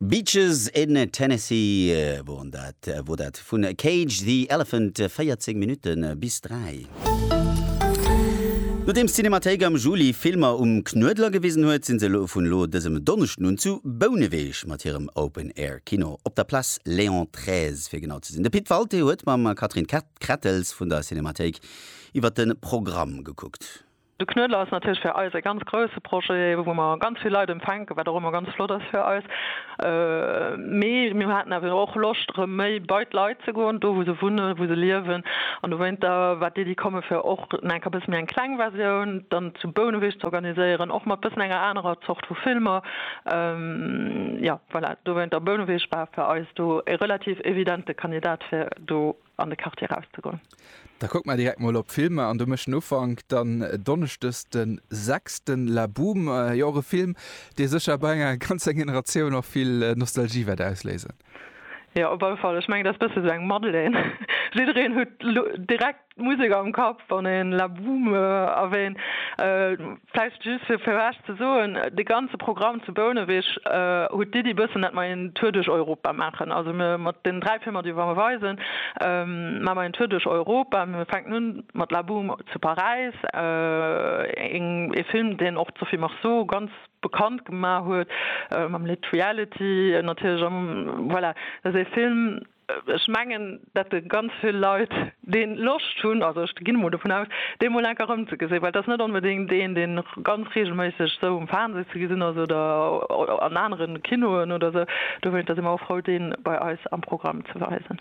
Beaches in Tennessee woren dat, wor dat vun Cage the Elephant, 14 Minutte bis 3. Nodeems d'Cinémathéik am Juli Filmer um Knuedler gewisen huet, sinn se elo vun elo dësem Donneschden un zu Bouneweg mat hirem Open Air Kino op der Place Léon xiii fir genau ze sinn. De Pit Walté huet mam Catherine Krettels vun der Cinémathéik iwwert de Programm gekuckt. De Knuedler ass natierlech fir eis e ganz grousse Projet, wou mer ganz vill Leit empfänken, wat och ëmmer ganz flott ass fir eis. Mee mir haten awer och Loscht, erëm méi bei d'Leit ze goen, do wou se wunnen, wou se liewen. An dowéinter war d'Iddi kommen, fir och enk e bësse méi eng kleng Versioun dann zu Bouneweg z'organiséieren, och mat bëssen enger anerer Zort vu Filmer. Jo, voilà, dowéinter Bouneweg war fir eis do e relativ evidente Kandidat, fir do an de Quartier erauszegoen. Da kucke mer direkt mol op d'Filmer an do mécht den Ufank dann donneschdes de 6. La Boome, jo och e Film, dee sécher bei enger ganzer Generatioun och vill Nostalgie wäert ausléisen. Jo, op alle Fall. Ech mengen, dat ass e bësse sou eng Madeleine. Jiddereen huet direkt d'Musek am Kapp, wann een La Boome erwähnt. Vläicht just fir fir Iech ze soen, dee ganze Programm zu Bouneweg huet d'Iddi bëssen, dat mer een Tour duerch Europa maachen. Also mir mat deenen dräi Filmer, déi mer weisen, maache mer een Tour duerch Europa. Mir fänken un mat La Boum zu Paräis, een ee Film, deen och d'Sophie Marceau ganz bekannt gemaach huet mam Lidd Reality natierlech. Voilà, dat ass ee Film, Ech mengen, dat de ganz vill Leit dee Loscht hunn, also ech ginn emol dovun aus, dee emol enk erëmzegesinn, well et ass net onbedéngt een, dee ganz reegelméisseg esou um Fernseh ze gesinn ass oder an anere Kinoen oder esou. Dofir si mer och frou, dee bei eis am Programm ze weisen.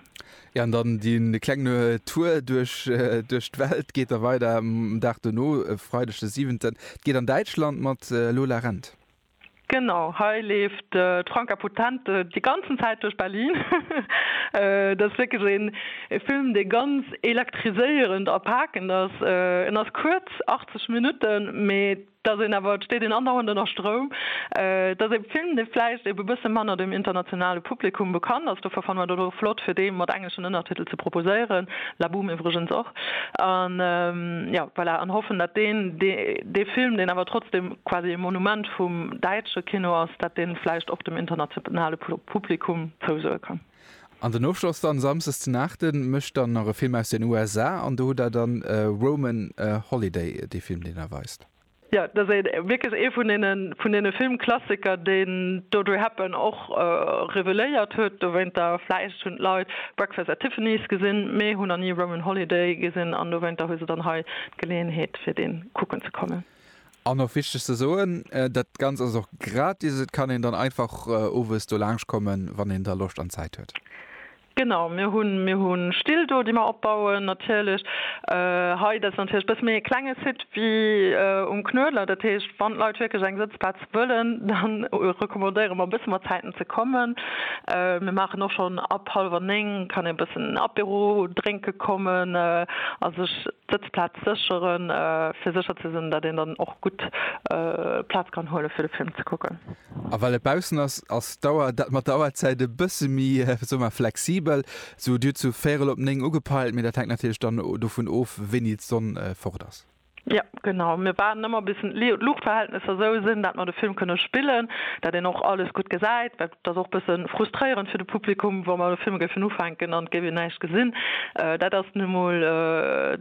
Jo, an dann dee klengen Tour duerch d'Welt geet da weider um Dag dono, e Freideg de siwenten. Et geet an Däitschland mat Lola Rent. Genau, hei leeft d'Franka Potente déi ganzen Zäit duerch Berlin. Et ass wierklech een Film, dee ganz elektriséierend a pakend ass. En ass kuerz, 80 Minutten, mee et ass een awer, et steet een andauernd ënner Stroum. Et ass ee Film, dee vläicht ebe bësse manner dem internationale Publikum bekannt ass, dofir fannen mer dat och flott, fir dee mat engleschen Ënnertitel ze proposéieren, La Boum iwwregens och. An, jo, voilà, an hoffen, datt deen, dee Film, deen awer trotzdem, quasi e Monument vum däitsche Kino ass, dat dee vläicht och dem internationale Publikum zousoe kann. An den Ofschloss dann, Samsdes den Aachten, mécht dann nach e Film aus den USA an do hutt Der dann Roman Holiday, dee Film, deen Der weist. Jo, dat ass wierklech ee vun deene Filmklassiker, deen d'Audrey Hepburn och reveléiert huet. Dowéinter, vläicht hunn d'Leit Breakfast at Tiffany's gesinn, mee hunn nach ni Roman Holiday gesinn an dowéinter hu se dann hei d'Geleeënheet, fir dee kucken ze kommen. An och wichteg ze soen, dat Ganzt ass och gratis, et kann een dann einfach owes do laanscht kommen, wann een da Loscht an Zäit huet. Genau, mir hunn, mir hu Still do, déi mer opbauen natierlech. Hei, dat ass natierlech e bësse méi e klenge Site wéi um Knuedler. Dat heescht, wann d'Leit wierklech eng Sëtzplaz wëllen, da recommandéiere mer e bësse mat Zäiten ze kommen. Mir maachen och schonn ab hallwer néng kann ee e bëssen Apéro drénke kommen a sech Sëtzplaz sécheren, fir sécher ze sinn, datt een dann och gutt Plaz kann huele fir de Film ze kucken. A well et baussen ass, ass d'Auer, dat mat der Auerzäit e bësse méi, soe mer, flexibel. Sou dir hutt sou véirel op néng ugepeilt, mee dat hänkt natierlech dann dovun of, wéini d'Sonn fort ass. Jo, genau. Mir waarden ëmmer bis d'Luuchtverhältnesser sou sinn, datt mer de Film kënne spillen, datt een och alles gutt gesäit. Dat ass och e bësse frustréierend fir de Publikum, wa mer de Film géifen ufänken an et géif een näischt gesinn. Dat ass nun emol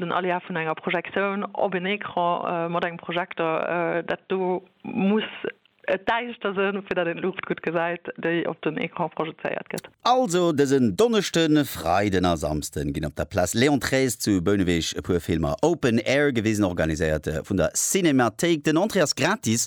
den Aléa vun enger Projektioun op een Ecran mat engem Projekter. Dat do muss et däischter sinn, fir datt een d'Luucht gutt gesäit, déi op den Ecran projezéiert gëtt. Also dësen Donneschden, Freiden a Samsden ginn op der Place Léon xiii zu Bouneweg e puer Filmer Open Air gewisen, organiséiert vun der Cinémathéik. Den Entrée ass gratis